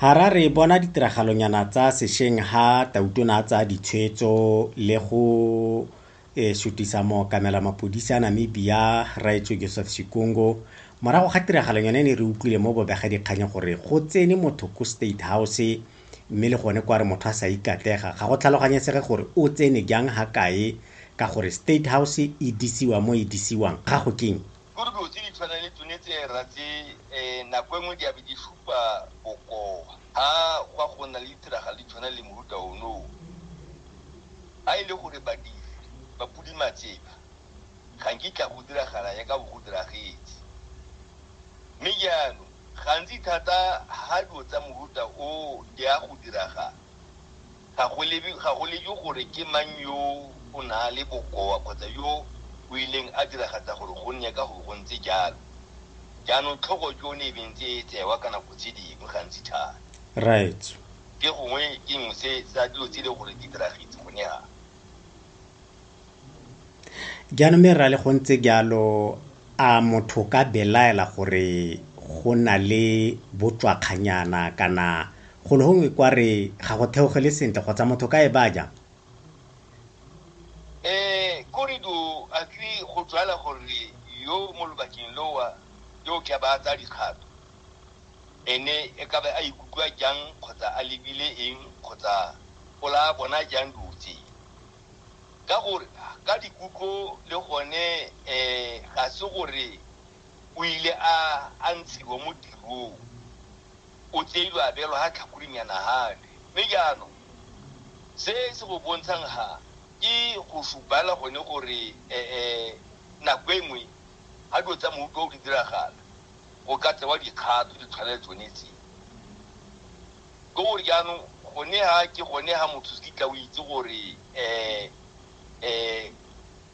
Harare, Bona ditiragalonyana tsa sešweng ha Tautona a tsaya ditshwetso le go e sutisa mookamela mapodisi a Namibia Rraetswe Joseph Sikungo morago ga tiragalonyana e ne re utlwile mo bobegadikganyeng gore go tsene motho ko State House mme le gone kwa re motho a sa ikatlega ga go tlhaloganyesege gore o tsene jang ha kae ka gore State House e disiwa mo e disiwang ga go keng Ruri dilo tse di tshwanang le tsone tse ra tse um nako e nngwe di a be di supa bokoa ha gwa go nna le ditiragalo di tshwana le mohuta onoo a e le gore badiri ba pudimatseba ga nkitla go diragala ya ka bo go diragetse mme jaanong gantsi thata ha dilo tsa mohuta o di a go diragala Ga go lebe, ga go lebe gore ke mang yo o na le bokoa kgotsa yo o ileng a diragatsa gore go nne ka go bo go ntse jalo. Jaanong tlhogo ke yone e beng tse e tsewa ka nako tse dingwe gantsi thata. Rraetsho. Ke gongwe ke nngwe se, sa dilo tse e leng gore di diragetse gone ha. Jaanong mme rra le go ntse jalo a motho ka belaela gore go na le botswakganyana kana golo gongwe kwa re ga go theogele sentle kgotsa motho ka e ba jang? Eh, korido a tle go jwala gore yo mo lobakeng lowa yo ke ba tsa dikgato ene e ka be a ikutlwa jang kgotsa a lebile eng kgotsa o la bona jang dutse ka gore ka dikutlo le gone um ga se gore o ile a a ntshiwa mo tirong o tseilwe a beelwa ga tlhakoring ya nagane mme jaanong se se go bontshang ga ke go supala gone gore um nako e nngwe ga dilo tsa moutlwa o di diragala go ka tsewa dikgato di tshwana le tsone tse Ka gore jaanong gone ha ke gone ha motho se kitla o itse gore um um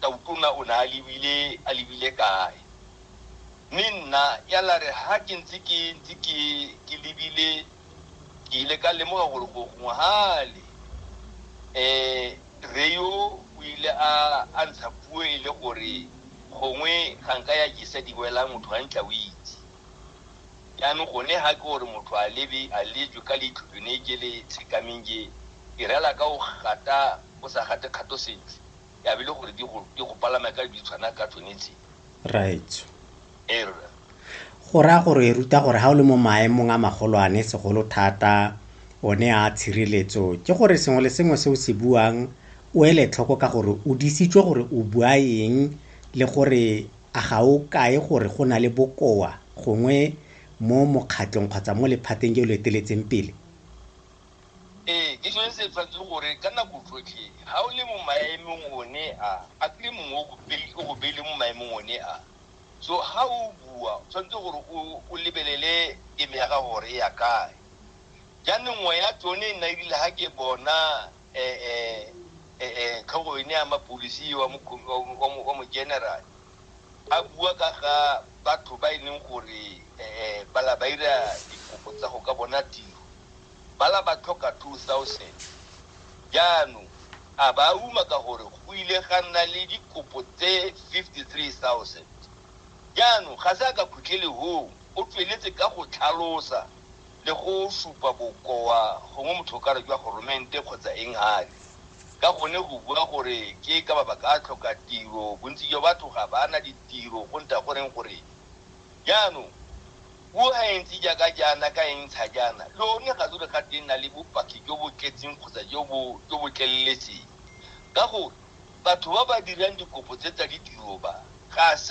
tautona o ne a lebile a lebile kae mme nna ya la re ha ke ntse ke ntse ke ke lebile ke ile ka lemoga gore go gongwe hale um re yo o ile a a ntsha puo e le gore gongwe ga nka ya jesa di wela motho ga ntla o itse Jaanong gone ga ke gore motho a lebe a lejwe ka leitlho jone je le tshekameng je, e reala ka o gata o sa gate kgato sentle, ya be e le gore di go di go palama ka di tshwana ka tsone tse. Raetsho. Ee rra. Go raya gore ruta gore ga o le mo maemong a magolwane segolo thata one a tshireletso ke gore sengwe le sengwe se o se buang o ele tlhoko ka gore o disitswe gore o bua eng le gore A ga o kae gore go na le bokoa gongwe mo mokgatlong kgotsa mo lephateng jo lo eteletseng pele? Ee, ke sone se tshwanetseng gore ka nako tsotlhe ga o le mo maemong one a, a kry-e mongwe o go pele, o go beile mo maemong one a. So ga o bua, o tshwanetse gore o, o lebelele teme ya gago gore e ya kae. Jaanong nngwe ya tsone e nna e rile ga ke bona eh, eh, eh, eh, tlhogo ene ya mapolisi wa mokho- wa mo- wa mo- wa mogeneral a bua ka ga batho ba e leng gore eh, eh, bala ba ira dikopo tsa go ka bona tiro bala ba tlhoka 2000 jaanong a ba uma ka gore go ile ga nna le dikopo tse 53000 jaanong ga se a ka khutlele hoo o tsweletse ka go tlhalosa le go supa bokoa gongwe motho o ka re jwa goromente kgotsa eng gale ka gone go bua gore ke ka mabaka a tlhoka tiro, bontsi jwa batho ga ba na ditiro go nta goreng gore jaanong puo ga e ntse jaaka jaana ka e ntsha jaana le one ga lo re ga teng na le bopaki jo bo tletseng kgotsa jo bo jo bo tleleletseng ka gore batho ba ba dirang dikopo tse tsa ditiro ba ga se